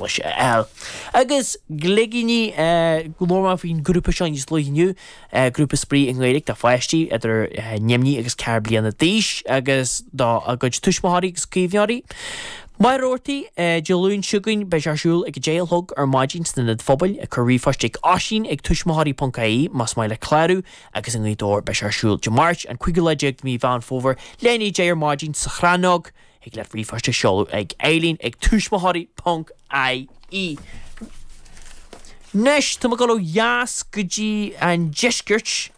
leis ar agus Gligíní, labhair mé faoin grúpa seo níos luaithe inniu, grúpa spraoi i nGaeilge do pháistí idir neamhní agus ceithre bliana d'aois agus do a gcuid tuismitheoirí agus caomhnóirí. Machaire Rabhartaigh, Dé Luain seo chugainn beidh sé ar siúl ag a deich a chlog ar maidin san Ionad Phobail, cuir ríomhphost ag Oisín ag tuismitheoirí ponc ie más maith leat clárú, agus i nGaoth Dobhair beidh sé ar siúl Dé Máirt, an 15ú lá de mhí Mheán Fómhair leath i ndiaidh a deich ar maidin sa Chrannóg. Thig leat ríomhphost a sheoladh ag Eileen ag tuismitheoirí ponc IE. Anois tá mé ag dul ó dheas go dtí an deisceart.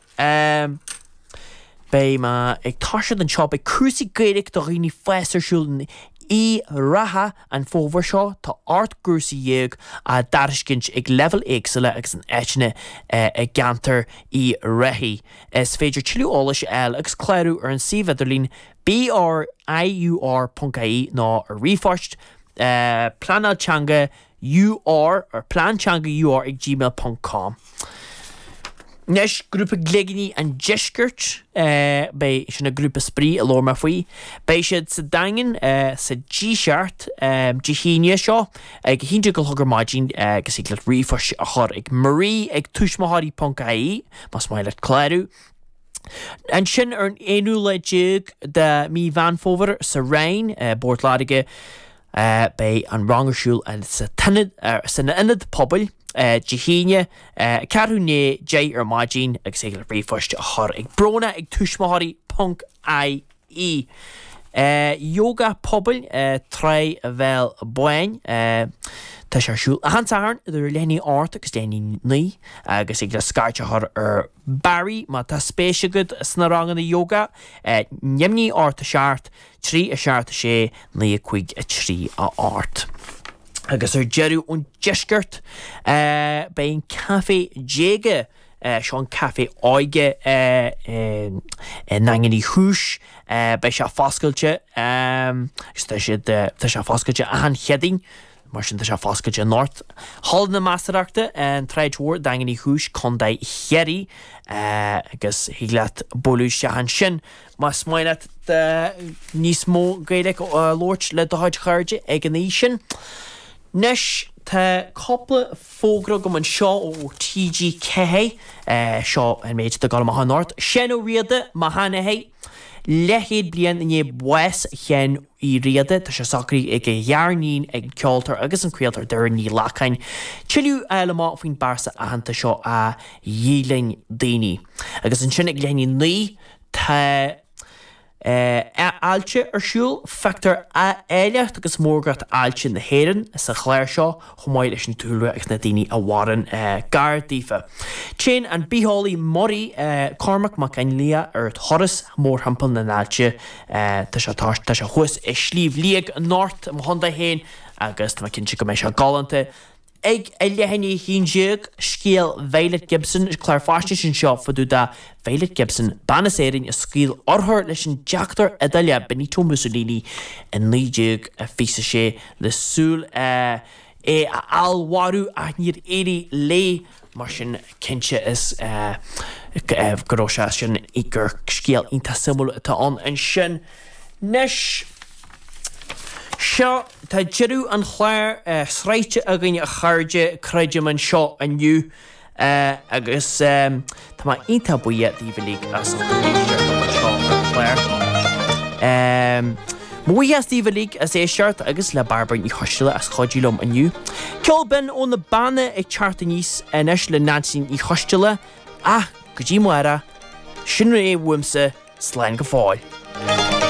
Beidh mé ag taisteal anseo. Beidh cúrsaí Gaeilge do dhaoine fásta ar siúl in Uíbh Ráthach, an fómhar seo. Tá ocht gcúrsaí déag á dtairiscint ag leibhéil éagsúla agus in áiteanna i gceantar Uíbh Ráthaigh. Is féidir tuilleadh eolais a fháil agus clárú ar an suíomh idirlín BRIUR ponc ie nó ar ríomhphost, pleanáil teanga UR ar plean teanga UR ag gmail ponc com. Anois, grúpa Gligíní an Deiscirt, beidh, sin an grúpa spraoi a labhair mé faoi, beidh siad sa Daingean sa Díseart Dé hAoine seo ag a haon déag a chlog ar maidin agus thig leat ríomhphost a chur ag marie ag tuismitheoirí ponc ie más maith leat clárú. Ansin, ar an aonú lá déag de Mhí Mheán Fómhair, sa Rinn i bPort Láirge, beidh an rang ar siúl san Ionad Pobail, Dé hAoine, ceathrú i ndiaidh a deich ar maidin, agus thig leat ríomhphost a chur ag Bróna ag tuismitheoirí ponc i. e, Ióga Pobail, Tráigh an Bhéil Bháin, Tá sé ar siúl achan Satharn idir leath i ndiaidh a hocht agus leath i ndiaidh a naoi agus thig leat scairt a chur ar Barry. Má tá spéis agat sna ranganna ióga, neamhní ocht a seacht, trí a seacht a sé naoi a cúig a trí a hocht. Agus ar deireadh ón deisceart, beidh an Café Déaga Seo an Café Óige i nDaingean Uí Chúis. Beidh sé foscailte agus tá siad, tá sé foscailte achan Chéadaoin, mar sin tá sé foscailte anocht, Halla na Measarachta, an tSráid Mhór, Daingean Uí Chúis, Co. Chiarraí. Agus thig leat bualadh isteach ansin más maith leat níos mó Gaeilge a labhairt le do chuid chairde ag an aois sin. Anois tá cúpla Fógra agam anseo ó TG4, seo an méid atá ag dul amach anocht, Seán Ó Riada, Mo Sheanathair. Leathchéad bliain i ndiaidh bhás Sheáin Uí Riada, tá sé socraithe ag a ghariníon, ag an ceoltóir agus an craoltóir Doireann Ní Ghlacáin, tuilleadh a fháil amach faoin bpearsa aitheanta seo a dheighleann daoine. Agus ansin ag leath i ndiaidh a naoi, tá. Aillte ar siúl. Feictear áilleacht agus mórgacht aillte na hÉireann sa chlár seo chomh maith leis an dúlra agus na daoine a mhaireann gar daofa. Téann an bitheolaí muirí Cormac Mac Fhionnlaoich ar thuras mórthimpeall na n-aillte. Tá sé thuas i Sliabh Liag anocht i mo chontae féin agus tá mé cinnte go mbeidh sé galánta. Ag a leath i ndiaidh a haon déag, Scéal Violet Gibson, clár faisnéise anseo fá dtaobh de Violet Gibson, bean as Éirinn a scaoil urchar leis an deachtóir Iodálach Benito Mussolini i 1926 le súil é a fheallmharú ach níor éirigh léi. Mar sin, cinnte go raibh sé sin, gur scéal iontach suimiúil atá ann ansin. Anois, seo, tá deireadh an chláir sroichte againn a chairde, creidim, anseo inniu agus tá mé iontach buíoch daoibh uilig as ucht an chairdeas ar fad anseo ar an gclár. Buíochas daoibh uilig as éisteacht agus le Bairbre Ní Choisdealbha as cuidiú liom inniu. Ceol binn ó na Beanna ag teacht aníos anois le Neansaí Ní Choisdealbha ach go dtí amáireach, sin é uaimse, slán go fóill.